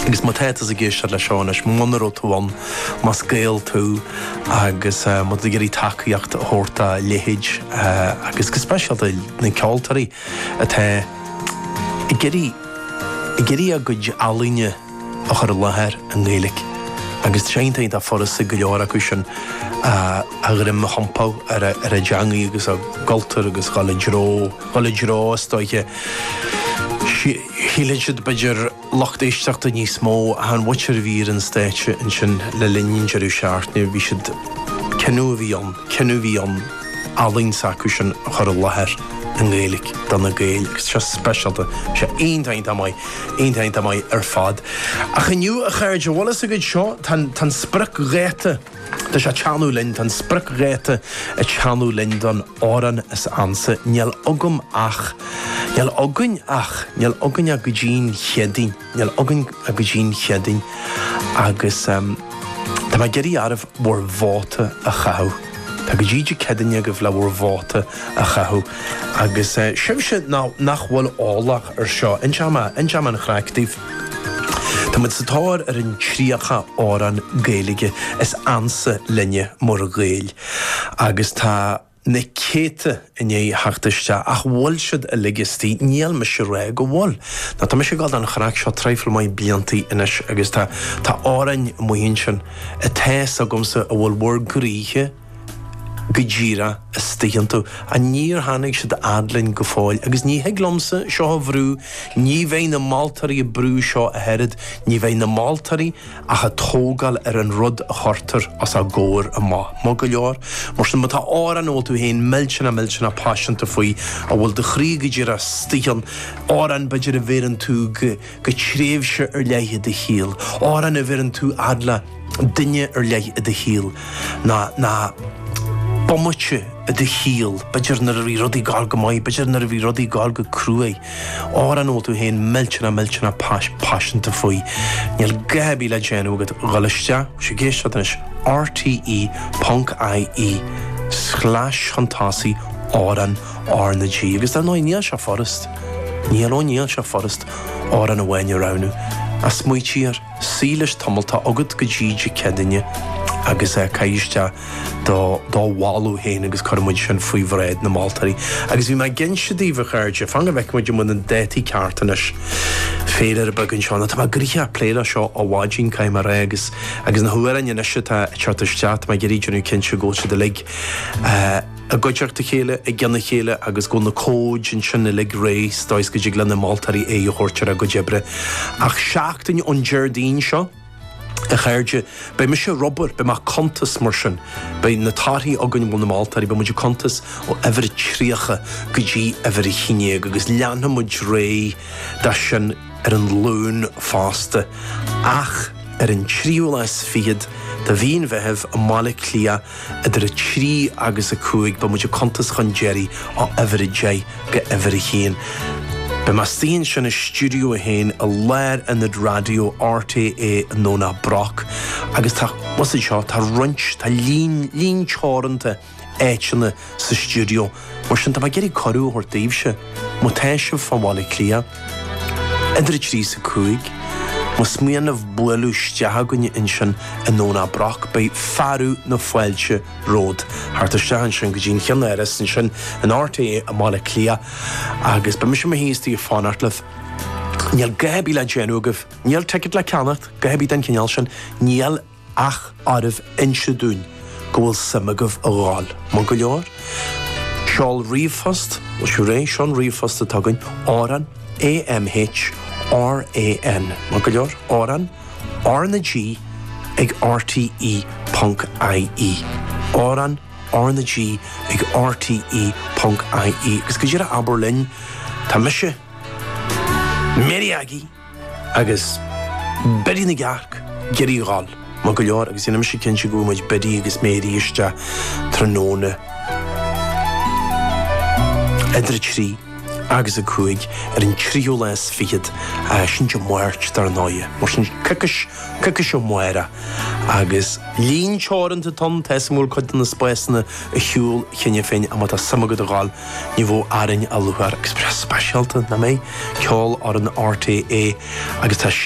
Agus má tá tusa ag éisteacht le seo anois, muna raibh tú ann, más Gael tú agus má tá tú ag iarraidh tacaíocht a thabhairt dá leithéid agus go speisialta na ceoltóirí atá ag iarraidh ag iarraidh a gcuid ealaíne a chur i láthair i nGaeilge agus tá sé iontach furasta go leor acu sin a dhroim a thiompú ar a ar a dteangaidh agus a gcultúr agus dhul i dtreo dhul i dtreo is dóiche Shíleann siad b'fhéidir lucht éisteachta níos mó ach an mhuintir a bhí ar an stáitse ansin le linn an deireadh seachtaine, bhí siad, cinneadh a bhí ann, cinneadh a bhí ann ealaín s'acusan a chur i láthair i nGaeilg do na Gaeil agus tá sé speisialta, tá sé iontach iontach maith, iontach iontach maith ar fad. Ach inniu a chairde, an bhfuil fhios agaibh seo, tá an spriocdháta, Tá sé a' teannadh linn, tá an spriocdháta a' teannadh linn don amhrán is ansa, níl agam ach, níl againn ach, níl againn ach go dtí'n Chéadaoin, níl againn ach go dtí'n Chéadaoin agus tá mé ag iarraidh oraibh bhur vóta a chaitheamh. Tá go dtí Dé Céadaoin agaibh le bhur vóta a chaitheamh agus sibhse nach bhfuil eolach ar seo, inseoidh mé an chraic daoibh. Tá muid sa tóir ar an 30 amhrán Gaeilge is ansa linne, mar Ghaeil, agus tá na céadta i ndiaidh theacht isteach, ach an bhfuil siad uilig istigh? Níl mise ag rá go bhfuil. Nó tá mise ag dul don chraic seo traidhfil maith bliantaí anois, agus tá tá amhráin amuigh ansin atá fhios agamsa a bhfuil bhur gcroíthe, go díreach istigh iontu, ach níor tháinig siad a fhad linn go fóill, agus ní thig liomsa seo a bhrú, ní bheidh na moltóirí ag brú seo ach oiread, ní bheidh na moltóirí ach ag tógáil ar an rud a chuirtear os a gcomhair amach, maith go leor, mar sin, má tá amhrán a bhfuil tú féin millteanach, millteanach paiseanta faoi, a bhfuil do chroí go díreach istigh ann, amhrán, b'fhéidir, a bheireann tú go. go tréimhse ar leith i do shaol, amhrán a bheireann tú fhad le duine ar leith i do shaol, ná bomaite i do shaol, b'fhéidir nuair a bhí rudaí gar go maith, b'fhéidir nuair a bhí rudaí gar go cruaidh, amhrán a bhfuil tú féin millteanach, millteanach paiseanta faoi. Níl a dhath ar bith le déanamh agat ach dhul isteach, bhfuil sibh ag éisteacht anois? rte. ie, slash chun tosaigh, amhrán. RnaG, agus dar ndóigh, níl sé furast, níl, ó níl sé furast amhrán amháin a roghnú, ach smaoitigh air, suí leis tamall, tá agat go dtí Dé Céadaoin agus é, caith isteach do, do mholadh féin agus cuirfidh muid sin faoi bhráid na moltóirí. Agus bhí mé ag inse daoibh, a chairde, fan go bhfeice muid an bhfuil na dátaí cearta anois, féilire beag anseo, nó tá mé go díreach a' plé le seo ó mhaidin, caithfidh mé a rá, agus, agus na hamhráin anois atá ag teacht isteach, tá mé ag iarraidh déanamh cinnte go bhfuil siad uilig, eh, i gcuideachta a chéile, i gceann a chéile agus go bhfuil na cóid ansin uilig réidh sa dóigh is go dtig le na moltóirí aghaidh a thabhairt ar a gcuid oibre. Ach seachtain ón Déardaoin seo, a chairde, beidh mise ag obair, beidh mé ag cuntas, mar sin beidh na torthaí againn, bhuel, na moltóirí, beidh muid ag cuntas ó uimhir a 30 go dtí uimhir a haon déag agus leanfaidh muid ar aghaidh de sin ar an Luan fosta. Ach ar an tríú lá is fichead de mhí an Mheithimh i mBaile Átha Cliath, idir 3 agus 5, beidh muid ag cuntas chun deiridh ó uimhir 10 go uimhir 1. Beidh mé istigh ansin i Stiúideo 1 i lár Ionad Raidió RTÉ i nDomhnach Broc agus tá, bhuel, sin seo, tá roinnt, tá líon, líon teoranta áiteanna, sa stiúideo, mar sin tá mé ag iarraidh cuireadh a thabhairt daoibhse, má tá sibh fá Bhaile Átha Cliath, idir a trí is a cúig, más mian libh bualadh isteach chugainn ansin i nDomhnach Broc, beidh fearadh na fáilte romhat theacht isteach ansin go dtí an cheannáras ansin in RTÉ i mBaile Átha Cliath agus beidh mise i mo shuí istigh ag fanacht libh. Níl a dhath ar bith le déanamh agaibh, níl ticket le ceannacht, a dhath ar bith den chineál sin, níl, Ach oraibh inse dúinn go bhfuil suim agaibh a ghabháil? Maith go leor. Seol ríomhphost, bhfuil sibh réidh? Seo an ríomhphost atá againn, amhrán A M H R A N, maith go leor, amhrán R na G ag RTÉ ponc IE, amhrán R na G ag RTÉ ponc IE. Agus go díreach abair linn, Tá mise, Mary Aggie! Agus Biddy na gCearc ag iarraidh a ghabháil, maith go leor, agus déanfaidh mise cinnte go bhfaighidh muid Biddy agus Mary isteach tráthnóna idir 3 agus 5 ar an tríú lá is fichead, sin Dé Máirt dar ndóighe, mar sin coicís, coicís ó amárach, agus líon teoranta atá ann, tá an mhórchuid de na spásanna ar shiúl cheana féin, ach má tá suim agat a ghabháil Ní bheadh orainn a lua ar Express speisialta, nach mbeidh? Ceolfhoireann RTÉ agus tá.